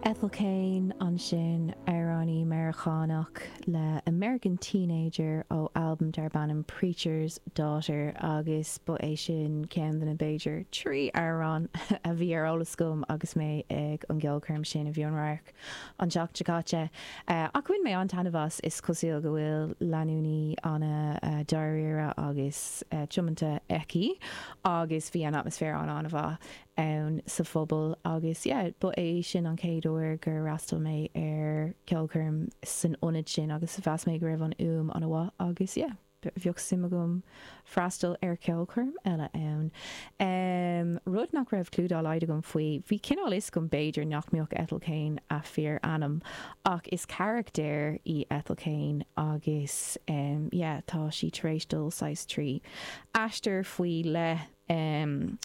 Ethel Cain, ansin amhránaí Meiriceánach le American Teenager ó albam darb ainm Preacher's Daughter agus ba é sin ceann de na b'fhéidir trí amhrán a bhí ar eolas agam agus mé ag an gceolchoirm sin a bhí in An Radharc an tseachtain seo caite ach bhain mé an-taitneamh as. Is cosúil go bhfuil leanúnaí ana dáiríre agus tiomanta aici agus bhí an atmaisféar an-mhaith. insa phobal agus yeah ba é sin an chéad uair gur fhreastail mé ar ceolchoirm san ionad sin agus mheas mé go raibh an fhuaim ana mhaith agus yeah bheadh suim agam freastail ar cheolchoirm eile ann. Ehm rud nach raibh cliú dá laghad agam faoi, bhí cineál fhios agam b'fhéidir nach mbeadh Ethel Cain a fíor ainm ach is carachtar í Ethel Cain agus ehm yeah tá sí tar éis dul saghas trí aistear faoi leith am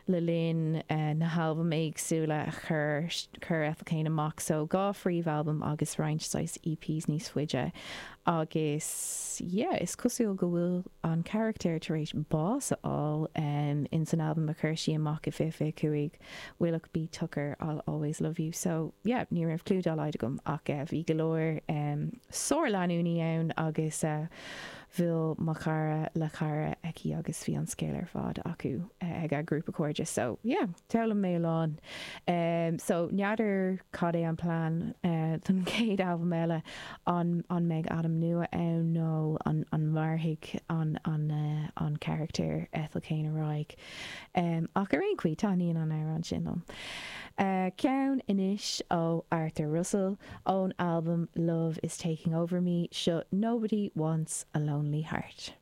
le linn na halbaim éagsúla a chuir Ethel Cain amach so dhá phríomhalbam agus roinnt saghas EPs níos faide agus yeah is cosúil go bhfuil an carachtar tar éis bás a fháil um ins an albam a chuir sí amach i 2025 Willoughby Tucker I'll always love you so yeah ní raibh cliú dá laghad agam ach eh bhí go leor um sár-leanúnaí ann agus eh Bhuail mo chara le chara aici agus bhí an scéal ar fad acu ag a grúpa cairde so yeah d'fhoghlaim mé a lán. So n'fheadar cad é an plean don chéad albam eile, an mbeidh ainm nua ann nó an mairfidh an carachtar Ethel Cain ar aghaidh? Ach ar aon chaoi, taithníonn an amhrán sin liom. Ceann anois ó Arthur Russell, ón albam Love is Taking Over Me, seo Nobody Wants a Lonely Heart.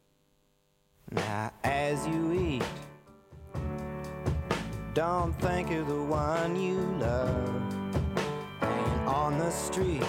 Now as you eat Don't think of the one you love Laying on the street